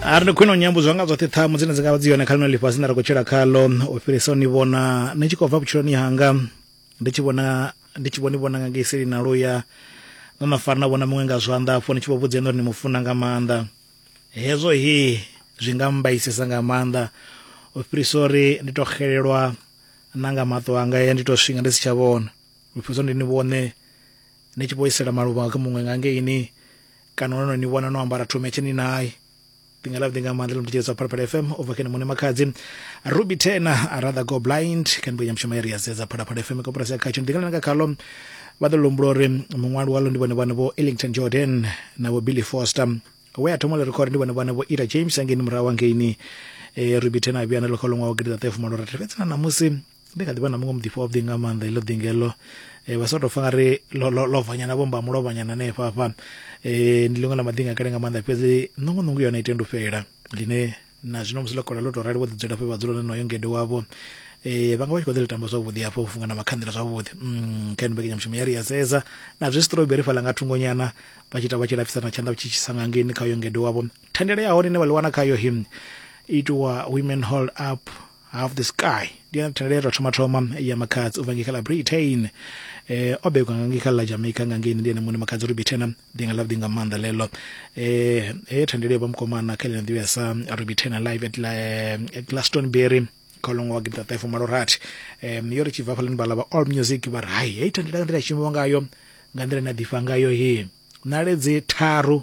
a ri ndi khwine u nyambudzwa nga dzoṱhe ṱhamu dzine dzi nga vha dzi yone kha lino ḽifhasi nda ri khou tshila khalo u fhirisa u ni vhona ni tshi khou bva vhutshiloni hanga ndi tshi vhona ndi tshi vho ni vhona nga ngei seli na luya no na fara na vhona muṅwe nga zwanḓa afho ni tshi vho vhudza ene uri ni mu funa nga maanḓa hezwo he zwi nga mbaisesa nga maanḓa u fhirisa uri ndi to xelelwa na nga maṱo anga ya ndi to swinga ndi si tsha vhona u fhirisa ndi ni vhone ni tshi vho isela maluvha kha muṅwe nga ngeini kana no no ni vhona no ambara thome tshini naye ḓinga ḽa ḓinga maanḓa ḽa mutshitshedza phalaphala fm u bva kene muṋe makhadzi ruby tena a rather go blind kha mbuya mushumo ya ri ya sedza phalaphala fm koporasi ya khatsho ḓinga ḽa nga khalo vha ḓo lombula uri muṅwali walo ndi vhone vhane vho ellington jordan na vho billy foster we a thoma ḽi record ndi vhone vhane vho ira james angeni murahu angeini e ruby tena a vhuya na ḽo kha luṅwaho gidi ḓaṱaefumalorathi fhedzi na ṋamusi ndi kha ḓi vha na muṅwe muḓifha wavhuḓi nga maanḓa iḽo ḓinga iḽo um vha sa tou fa nga ri lovhanyana vho mba mulovhanyana hanefha hafha um eh, ndi ḽiṅwe ḽa maḓinga kale nga maanḓa fhedzi ṋongonungu yone itendi u fhela ḽine na zwino musi ḽo kola ḽo tou rali vho ḓidzula fhe vha dzula nenoyo ngede wavho eh vhanga vha tshi kho ḓi ri tamba zwavhuḓi hafha u funga na makhanḓela zwavhuḓi mm kha nbeke nyamushumo ya ri ya sedza na zwi strawberry fhala nga thungonyana vha tshi ita vha tshi lafisa na tshanḓa tshi tshisa nga ngeni kha yo ngede wavho thandela ya hone ine vha ḽi wana kha yo him itiwa women hold up half the sky ndi yone thendelelo ya thoma thoma ya makhadzi u bva ngei kha ḽa britain eh, o bebwa nga ngei kha ḽa jamaica nga ngei ndi ene muṋe makhadzi uri bithena ndi nga ḽavhuḓi nga maanḓa ḽeḽo eh, heyo thendelo yo vha mukomana kha ḽino ḓivhea sa rubithena live at, la, eh, at glastonbury kha ṅwaha wa gidida ṱahe fumalo rathi um yo ri tshi bva hafhaḽani vhala vha all music vha ri hai heyi thendelo nga nḓila ya shumiwa ngayo nga nḓila ine a ḓifha ngayo he naledzi tharu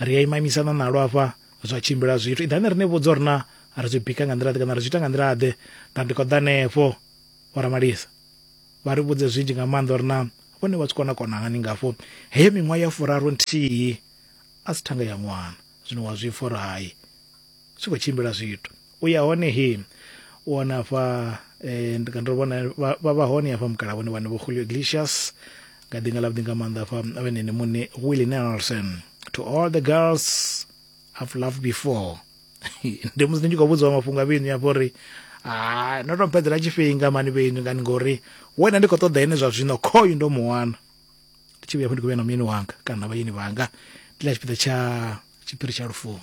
ri a imamisana nalo afha zwa tshimbila zwithu iḓani ri ni vhudza uri na ri zwi bika nga nḓila ḓe kana ri zwi ita nga nḓila ḓe na ndi khou ḓa hanefho vho ramalisa vha ri vhudze zwinzhi nga maanḓa uri na vhone vha zwi kona kona hani ngafho heyo miṅwaha ya furaru nthihi a si thanga ya ṅwana zwino wa zwi pfha uri hai tshi khou tshimbila zwithu u ya hone he u wana afha eh, ndi ndo vhona vha vha hone afha mukala vhone vhane vho Julio Iglesias nga ḓinga ḽa vhuḓinga maanḓa afha vhenene muṋe Willie Nelson to all the girls I've loved before ndi musi ndi tshi khou vhudziwa mafhungo a vhinu afho uri ha no to mpedzela tshifhinga mani vhinu ngani ngori wena ndi khou ṱoḓa ene zwa zwino khoyu ndo mu wana ndi tshi vhuya fho ndi khou vhuya na muyeni wanga kana na vhayeni vhanga ndi ḽa tshipiḓa tsha tshiphiri tsha lufuno